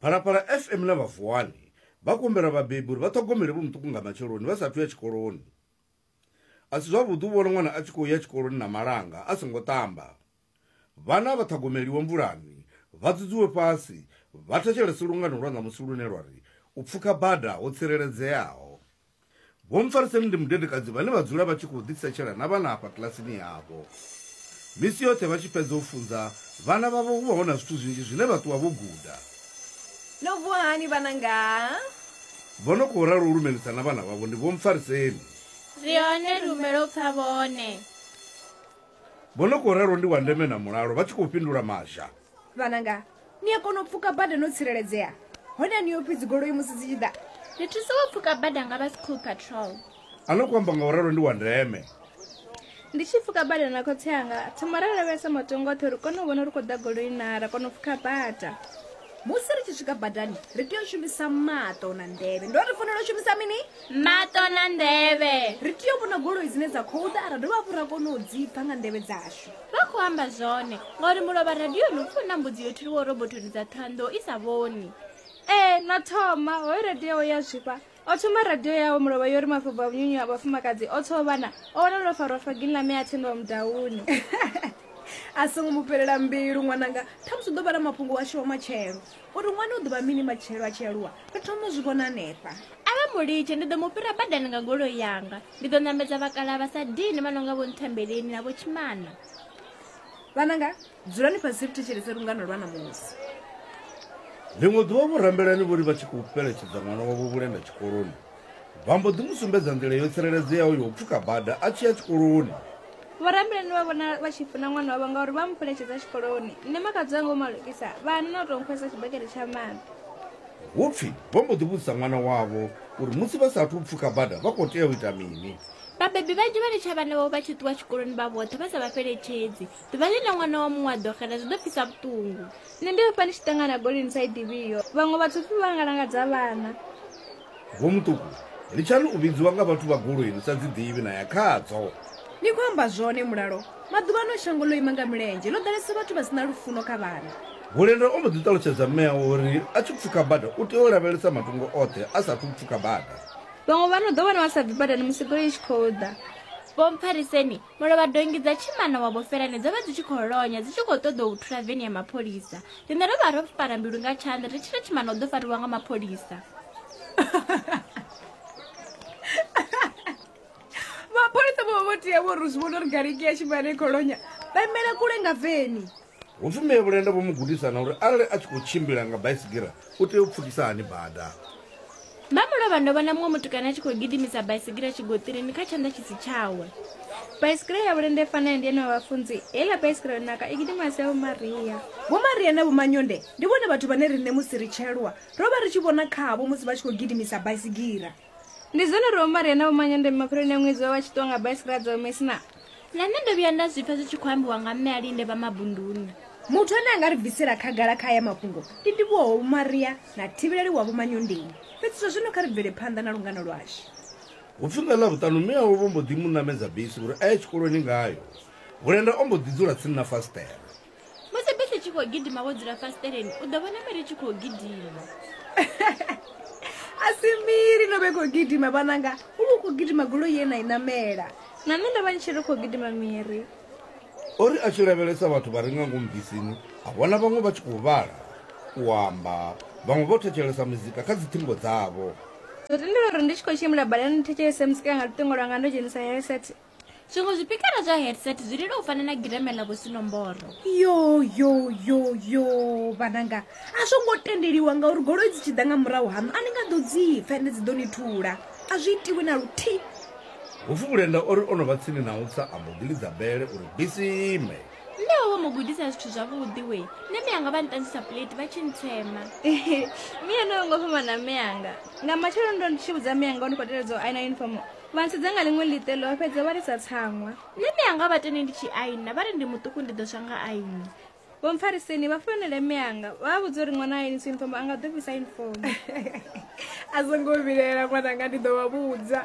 phalaphala fm na vhavuwani vha kumbela vhabebi uri vha ṱhogomele vhomuṱuku nga matsheloni vha sathu ya tshikoloni a si zwavhuḓi u vhona ṅwana a tshi khou ya tshikoloni na malanga a songo ṱamba vhana vha ṱhogomeliwe mvulani vha dzudzuwe fhasi vha thetshelese lungano lwa ṋamusi lune lwa ri u pfuka bada ho tsireledzeaho Vho Mpfariseni ndi mudedekadzi vhane vha dzula vha tshi khou ḓisetshela na vhana afha kilasini yavho. Misi yoṱhe vha tshi fhedza u funza vhana vhavho hu vha hu na zwithu zwinzhi zwine vha ṱuwa vho guda. No vuwa hani vhananga? Vho no khou ralo u lumelisa na vhana vhavho ndi Vho Mpfariseni. Ri hone ri humela u pfa vhone. Vho no khou ralo ndi Wandeme na Mulalo vha tshi khou fhindula Mazha. vhananga ni a kona u pfuka bada no tsireledzea hone a ni yo pfi dzigoloi musi dzi tshi ḓa ri thusa u pfuka bada nga vha school patrol a no ku amba nga u ralo ndi wa ndeme ndi tshi pfuka bada na khotsi anga thoma ra lavhelesa matongo oṱhe uri kone u vhona uri khou ḓa goloi na ra kona u pfuka bada musi ri tshi swika badani ri tea u shumisa maṱo na nḓevhe ndo ri fanela u shumisa mini maṱo na nḓevhe ri tea u vhona goloi dzine dza khou ḓa ra dovha hafhu ra kona u dzi pfha nga nḓevhe dzashu vha khou amba zwone ngauri mulovha radioni u pfhi u na mbudzi yo thuliwo robotoni dza ṱhanḓo i sa vhoni ee na thoma hoyo radio ya zwifha o thoma radio yawe mulovha yo ri mafhubvo a vhunyunyu a vhafumakadzi o tho vhana o wana lwo farwa fagini ḽa me a thendiwa mudauni a songo mu fhelela mbilu ṅwananga thamusi u ḓo vha na mafhungo washu wa matshelo Uri ṅwana u ḓo vha mini matshelo a tshi aluwa, ri thoma u zwi vhona hanefha. A vha mu litshe, ndi ḓo mu fhira badani nga goloi yanga. Ndi ḓo ṋamedza vhakalaha vha sa dini vha no nga Vho Nthembeleni na Vho Tshimana. Vhananga, dzulani fhasi ri thetshelese lungano lwa ṋamusi. Ḽiṅwe ḓuvha vho Rambelani vho ri vha tshi khou fheletshedza ṅwana wavho Vhulenda tshikoloni, Vha mbo ḓi mu sumbedza nḓila yo tsireledzeaho ya u pfuka bada a tshi ya tshikoloni. Vhoramilayo ni vha vhona vha tshi funa ṅwana wavho ngauri vha mu pheletshedza tshikoloni. Nṋe makhadzi wanga u malukisa, vha hana na u tou nkhwesa tshibakete tsha maḓi. Hu pfi vho mbo ḓi vhudzisa ṅwana wavho uri musi vha sa athu u pfuka bada vha khou tea u ita mini. Vhabebi vhanzhi vha litsha vhana vhavho vha tshi ṱuwa tshikoloni vha vhoṱhe vha sa vha fheletshedzi. Ḓuvha ḽine ṅwana wa muṅwe a ḓo xela zwi ḓo pfisa vhuṱungu. Nṋe ndi ofha ndi tshi ṱangana goloi ni sa i ḓivhiho. Vhaṅwe vhathu pfi vha nga langadza vhana. Vhomuṱuku, litshani u vhidziwa nga vhathu vha goloi ni sa dzi ḓivhi na ya khadzo. Ni khou amba zwone Mulalo, maḓuvhano shango ḽo ima nga milenzhe, ḽo ḓalesa vhathu vha si na lufuno kha vhana. Hulenda o mbo ḓi ṱalutshedza mme awe uri a tshi pfuka bada u tea u lavhelesa matungo oṱhe a sa athu u pfuka bada. Vhaṅwe vha no ḓo wana vha sa bvi badani musi goloi i tshi khou ḓa. Vho Mphariseni Mulovhadongi dza tshimana wa Vhofelane dzo vha dzi tshi khou lonya dzi tshi khou ṱoḓa u thula veni ya mapholisa. Riṋe ro vha ro fara mbilu nga tshanḓa ri tshi ri tshimana u ḓo fariwa nga mapholisa. mapholisa vho vha vho tea vho ri zwi vhona uri gariki ya tshimana i khou lonya vha imele kule nga veni. Hu pfi Mme Vhulenda vho mu gudisa na uri arali a tshi khou tshimbila nga baisigira u tea u pfukisa hani bada. Vha mu lovha ndo vhona muṅwe mutukana a tshi khou gidimisa baisigira tshigoṱirini kha tshanḓa tshi si tshawe. Baisigira ya Vhulenda i fana ya ndi ene wa vhafunzi, heiḽa baisigira yo naka i gidima a si ya Vho Maria. Vho Maria na Vho Manyonde ndi vhone vhathu vhane riṋe musi ri tshe lwa ro vha ri tshi vhona khavho musi vha tshi khou gidimisa baisigira. ndi zwone uri omari ana vhumanyandeme mapheloni a ṅwedzi vha vha tshi ṱuwa nga baisigira dza omesi na na nṋe ndo vhuya nda zwi pfa zwi tshi khou ambiwa nga mme a linde vha mabunduni muthu ane a nga ri bvisela khagala kha aya mafhungo ndi ndivhuwaho vhumaria na thivheleli wa vhumanyondeni fhedzi zwa zwino kha ri bvele phanḓa na lungano lwashu hu pfi nga ḽavhuṱanu mme awe vho mbo ḓi mu ṋamedza bisi uri a ye tshikoloni ngayo vhulenda o mbo ḓi dzula tsini na fasiṱere musi bisi tshi khou gidima wo dzula fasiṱeleni u ḓo vhona miri tshi khou gidima a si miri no vhe khou gidima vhananga u vha u khou gidima golo ye na i namela na nṋe ndo vha ni tshi ri khou gidima miri o ri a tshi lavhelesa vhathu vha re nga ngomu bisini a vhona vhaṅwe vha tshi khou vhala u amba vhaṅwe vho thetshelesa muzika kha dziṱhingo dzavho ndo tendela uri ndi tshi khou tshimbila badani ndi thetshelese muzika nga luṱingo lwanga ndo dzhenisa heset zwiṅwe zwipikara zwa headset zwi lila u fana na gireme ḽa vhusinomboro yo yo yo yo vhananga a zwo ngo tendeliwa ngauri goloi dzi tshi ḓa nga murahu haṋu a ni nga ḓo dzi pfa ende dzi ḓo ni thula a zwi itiwi na luthihi hupfi vhulenda o ri o no vha tsini na u tsa a mbo ḓi lidza bele uri bisi ime nṋe ho vho mu gudisa zwithu zwavhuḓi we nṋe miyanga vha nṱanzisa plate vha tshi ntsema miya no yo ngo fhambana miyanga nga matshelo ndo ndi tshi vhudza miyanga o ni khou teledza u aina uniform Vha ntshedza nga ḽiṅwe ḽiṱelo vha fhedza vha lisa tsaṅwa. Nṋe mianga vha tende ndi tshi aina vha ri ndi muṱuku ndi ḓo swa nga aini. Vho Mpfariseni vha founela mianga vha vha vhudza uri ṅwana a ainisa yunifomo a nga ḓo fhisa yunifomo. A zwo ngo vhilaela ṅwananga ndi ḓo vha vhudza.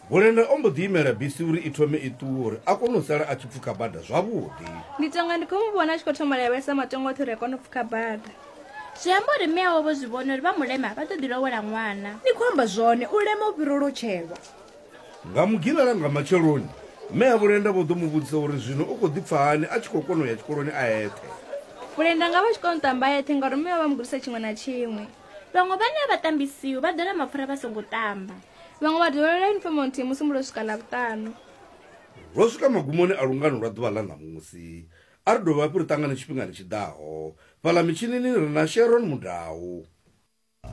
Bulenda o mbo ḓi imela bisi uri i thome i ṱuwe uri a kone u sala a tshi pfukha bada zwavhuḓi. Ndi tonga ndi khou mu vhona a tshi khou thoma lavhelesa matongo oṱhe uri a kone u pfukha bada. zwi amba uri mme awe vho zwi vhona uri vha mulema vha ḓo ḓi lowela ṅwana ni khou amba zwone u lema u fhira u lotshelwa nga mugilala nga matsheloni mme ya vhulenda vho ḓo mu vhudzisa uri zwino u khou ḓi pfa hani a tshi khou kona u ya tshikoloni a eṱhe vhulenda nga vha tshi kona u ṱamba eṱhe ngauri mme vha vha mu gudisa tshiṅwe na tshiṅwe vhaṅwe vhane a vha tambisiwi vha ḓola mapfura vha songo tamba vhaṅwe vha dovhelela yunifomo nthihi musi mulo swika ḽa vhuṱanu ro swika magumoni a lungano lwa ḓuvha ḽa ṋamusi A ri dovhafhi ri ṱangane tshifhingani tshi ḓaho. Fhaḽa mitshinini ri na Sharon Mudau.